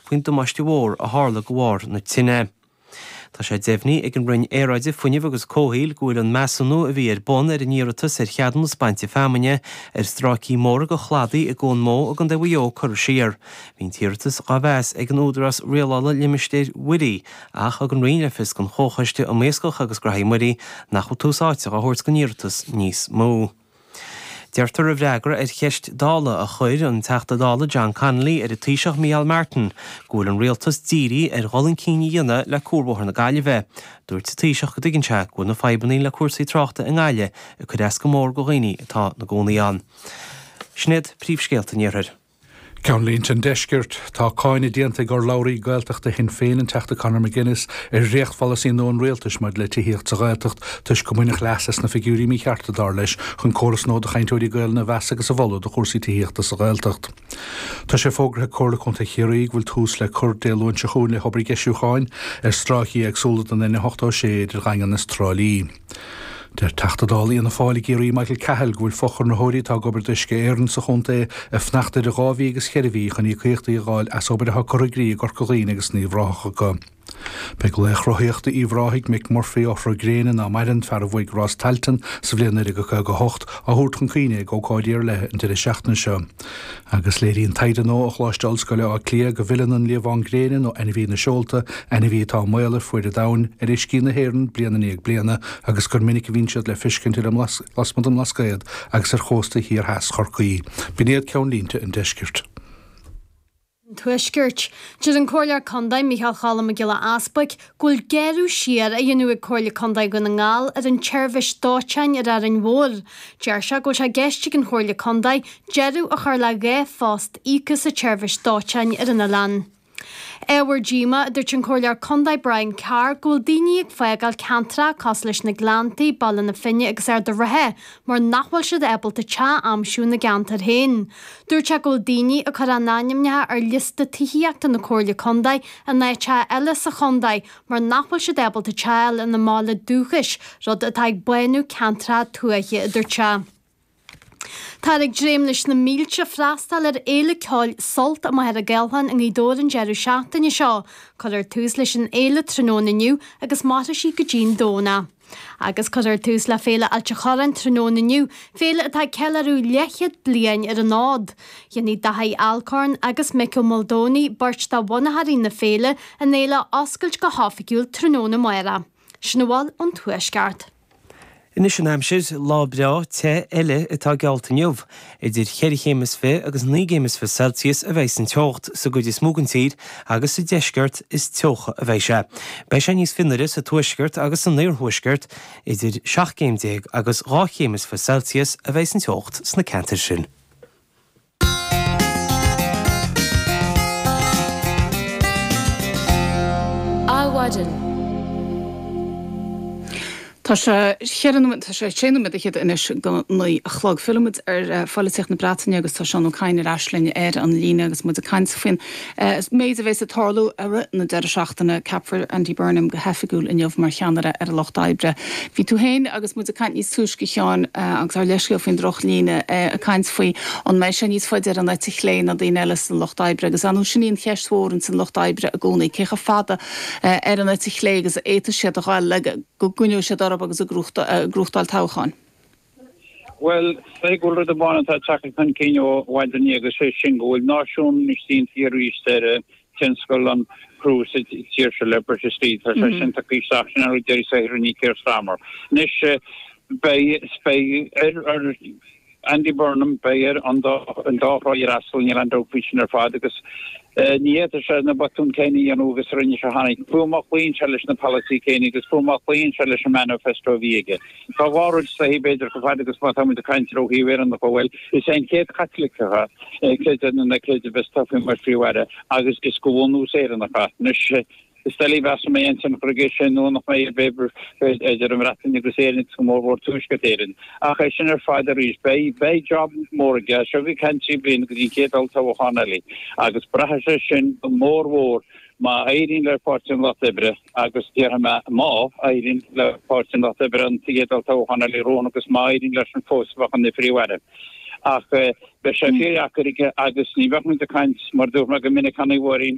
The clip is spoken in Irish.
faoin damáiste mhór a tharla de bharr na tine. Tá sé deimhnigh ag an Roinn Aeráide, Fuinnimh agus Comhshaoil go bhfuil an measúnú a bhí ar bun ar an iarratas ar cheadúnas bainte feamainne ar stráicí móra de chladaí i gCuan Mó i gContae Mhaigh Eo curtha siar. Bhí an t-iarratas dhá mheas ag an Údarás Rialála Limistéir Mhuirí ach thug an Roinn le fios don Chomhchoiste um Iascach agus Gnothaí Muirí nach bhfuil tús áite á thabhairt don iarratas níos mó. Deirtear i bhfreagra ar cheist Dála a chuir an Teachta Dála John Connolly ar an Taoiseach Micheál Martin go bhfuil an Rialtas dírithe ar dhul chun cinn a dhéanamh le Cuarbhóthar na Gaillimhe. Dúirt an Taoiseach go dtuigeann sé go bhfuil na fadhbanna le cúrsaí tráchta i nGaillimh ag cur as go mór go dhaoine atá ina gcónaí ann. Sinéad, Príomhscéalta an Iarthair. Ceannlínte an Deiscirt, Tá cáineadh déanta ag urlabhraí Gaeltachta Shinn Féin, an Teachta Conor McGuinness, ar dhréachtpholasaí nua an Rialtais maidir le tithíocht sa Ghaeltacht toisc gur baineadh leas as na figiúirí míchearta, dar leis, chun córas nua do chainteoirí Gaelainne a mheas agus a mholadh do chúrsaí tithíochta sa Ghaeltacht. Tá sé fógartha ag Comhairle Contae Chiarraí go bhfuil tús le cur Dé Luain seo chugainn le hobair dheisiúcháin ar stráicí éagsúla den N86 idir Dhaingean is Trá Lí. Deir Teachta Dála Fhianna Fáil i gCiarraí Michael Cahill go bhfuil fochonraitheoirí atá ag obair d'Uisce Éireann sa chontae ag fanacht idir dhá mhí agus cheithre mhí chun íocaíochtaí a fháil as obair atá curtha i gcrích i gCorca Dhuibhne agus in Uíbh Ráthach acu. Beidh Laoch Rothaíochta Uíbh Ráthaigh, Mick Murphy, ó Shrúgréana, ná maireann, fear a bhuaigh Rás Tailteann sa bhliain 1958, á thabhairt chun cuimhne ag ócáidí ar leith an deireadh seachtaine seo. Agus léiríonn taighde nua ó Choláiste Ollscoile Átha Cliath go bhfilleann an liamhán gréine nó ainmhí na seolta, ainmhí atá i mbaol ar fuaid an domhain, ar uiscí na hÉireann bliain i ndiaidh bliana agus gur minic a bhíonn siad le feiscint lasmuigh den mBlascaod agus ar chóstaí thiar theas Chorcaí. B'in iad ceannlínte an Deiscirt. an Tuaiscirt. Deir an Comhairleoir Condae Micheál Cholm Mac Giolla Easbuic go bhfuil gearradh siar á dhéanamh ag Comhairle Condae Dhún na nGall ar an tseirbhis dóiteáin ar Árainn Mhór. Deir sé go bhfuil sé i gceist ag an Chomhairle Condae deireadh a chur le dhá phost íoctha sa tseirbhis dóiteáin ar an oileán. Ábhar díomá a dúirt an Comhairleoir Condae Brian Carr go bhfuil daoine ag fágáil ceantracha cosúil leis na Gleanntaí, Baile na Finne agus Ard a' Rátha mar nach bhfuil siad ábalta teach a aimsiú ina gceantar féin. Dúirt sé go bhfuil daoine ag cur a n-ainmneacha ar liosta tithíochta na Comhairle Contae in áiteacha eile sa chontae mar nach bhfuil siad ábalta teach a fháil ina mbaile dúchais, rud atá ag bánú ceantracha tuaithe, a dúirt sé. Táthar ag dréim leis na mílte freastal ar fhéile ceoil Sult amuigh ar an Ghallán i nGaoth Dobhair an deireadh seachtaine seo. Cuirfear tús leis an fhéile tráthnóna inniu agus mairfidh sí go dtí'n Domhnach. Agus cuirfear tús le Féile Ailt a Chorráin tráthnóna inniu, féile atá ag ceiliúradh leathchéad bliain ar an fhód. Déanfaidh Daithí Alcorn agus Micko Muldowney, beirt de bhunaitheoirí na féile, an fhéile a oscailt go hoifigiúil tráthnóna amárach. Sin a bhfuil ón Tuaisceart. Anois an aimsir, lá breá te eile atá geallta inniu. Idir cheithre chéim is fiche agus naoi gcéim is fiche Celsius a bheidh an teocht sa gcuid is mó den tír agus sa deisceart is teocha a bheidh sé. Beidh sé níos fionnuaire sa tuaisceart agus san iarthuaisceart. Idir seacht gcéim déag agus dhá chéim is fiche Celsius a bheidh an teocht sna ceantair sin. Adhmhaidin. Tá sé cheithre nóiméad, tá sé sé nóiméad fichead anois go naoi a chlog. Fillimid ar pholaitíocht na Breataine agus tá Seán Ó Cadhain ar ais linn ar an líne agus muid ag caint faoin méid a bheas ag tarlú i rith na deireadh seachtaine. Ceapfar Andy Burnham go hoifigiúil inniu mar cheannaire ar an Lucht Oibre. Bhí tú féin agus muid ag caint níos túisce, a Sheáin, agus ár leithscéal faoin droch líne, ag caint faoi an mbeidh sé níos faide ar an eite chlé ná daoine eile sa Lucht Oibre agus, ar ndóigh sin í an cheist mhór in san Lucht Oibre i gcónaí, cé chomh fada ar an eite chlé agus a fhéadfaidh siad a ghabháil le go gcoinneoidh siad orthu agus ag gnóthachtáil toghcháin. Bhuel, cé go bhfuil rud amháin atá ag teacht chun cinn ó mhaidin inné agus sé sin go bhfuil náisiúnú déanta arís ar thionscal an chruach sa tír seo le breis is fiche bliain. Tá sé sin tagtha isteach, sin é deireadh saothar le Keir Starmer. Anois, beidh ar. Andy Burnham, beidh air an dá thrá a fhreastal, níl aon dabht faoi sin ar fad, agus ní fhéadfadh sé na botúin céanna a dhéanamh agus a rinne sé cheana. Fiú má chloíonn sé leis na polasaithe céanna agus fiú má chloíonn sé leis an manifesto a bhí aige. Tá dhá rud suntasach b'fhéidir chomh fada agus má táimid ag caint ó thaobh Éireannach de, bhuel, is é an chéad Chaitliceach, creid é nó ná creid, a bheas tofa mar Phríomh-Aire agus is de bhunús Éireannach anois. Is doiligh a mheas an mbeidh ansin chor ar bith, sé nó nach mbeidh, ar bith idir an Bhreatain agus Éirinn agus go mór mhór Tuaisceart Éireann. Ach é sin ar fad arís, beidh, beidh job mór aige, is é ag caint trí bliana go dtí an chéad olltoghchán eile agus braithfidh sé sin go mór mhór má éiríonn le Páirtí an Lucht Oibre agus déarfaidh mé má éiríonn le Páirtí an Lucht Oibre an chéad olltoghchán eile romhainn agus má éiríonn leis an fós a bheadh ina Phríomh-Aire. Ach beidh sé fíor-dheacair aige agus ní bheadh muid ag caint, mar dúirt mé go minic cheana i bhfairín,